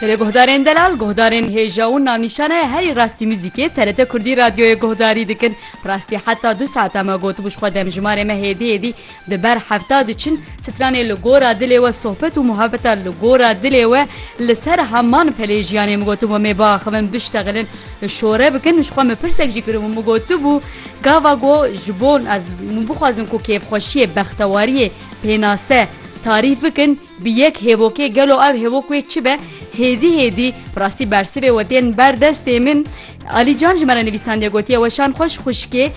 Li guhdarên delal, guhdarên hêja û navnîşana ye herî rastî muzîkê TRT Kurdî radyoyê guhdarî dikin. Rastî heta du saeta me gotibû ji xwe demjimarê me hêdî hêdî di ber hefta diçin. Stranê li gora dilê we sohbet û muhabeta li gora dilê we li ser heman pelê jiyanê min gotin we mê biaxivin biştexilin şore bikin ji xwe min pirsek jî kiribû min gotibû gava ku ji bo ez min bixwazin ku kêfxweşiyê bextewariyê pênase tarîf bikin Bi yek hêvokê gelo ev hêvok wê çi be? Hêdî hêdî bi rastî bersivê we tên ber destê min. Alî Can ji me re nivîsandiye gotiye Weşan xweş xwişkê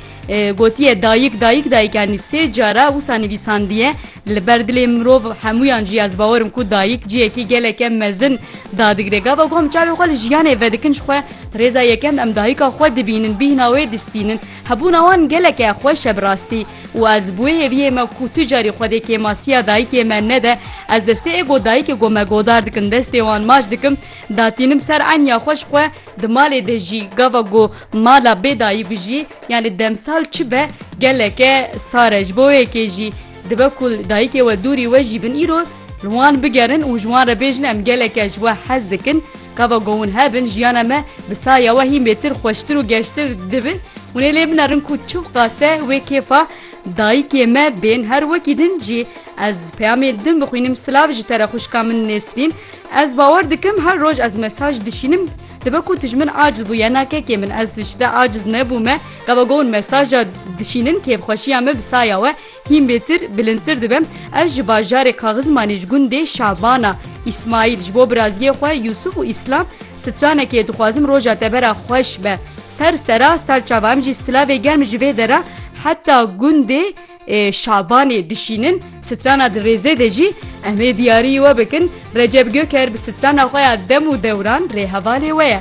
gotiye dayik dayik dayik yanî sê car e wisa nivîsandiye li ber dilê mirov hemûyan jî ez bawer im ku dayik cihekî geleke mezin dadigire. Gava ku em çavê xwe li jiyanê vedikin ji xwe di rêza yekem em dayika xwe dibînin bîhna wê distînin. Hebûna wan geleke xweş e bi rastî. Û ez bi wê hêviyê me ku tu carî xwe dê kêmasiya dayikê me nede, ez destê ê godayikê ku me godar dikin destê wan maç dikim, datînim ser eniya xwe ji xwe, di malê de jî gava ku mala bê dayî bijî yanî demsal çi be geleke sar e. Ji bo wê yekê jî dibe ku li dayikê we dûrî we jî bin îro. Li wan bigerin û ji wan re bêjin em geleke ji we hez dikin, gava ku hûn hebin jiyana me bi saya we hîn bêtir, xweştir û geştir dibi. Hûn ê lê binerin ku çiw qase wê kêfa dayikê me bên. Her wekî din jî ez peyamê din bixwînim silav ji te re xwişka min Nesrîn. Ez bawer dikim her roj ez mesaj dişînim dibe ku tu ji min aciz bûye na kekê min ez ji te aciz nebûme gava ku hûn mesaja dişînin kêfxweşiya me bi saya we Hîn bêtir, bilindtir dibe, ez ji bajarê Kaxizmanê ji gundê Şabana, Îsmaîl, ji bo biraziyê xwe Yûsûf û Îslam stranekê dixwazim roja te bera xweş be. Ser sera serçava em jî silavê germ ji vê dera heta gundê Şabanê dişînin, strana di rêzê de jî em ê diyariyî we bikin, Recep Göker bi strana xwe ya dem û dewran rê hevalê we ye.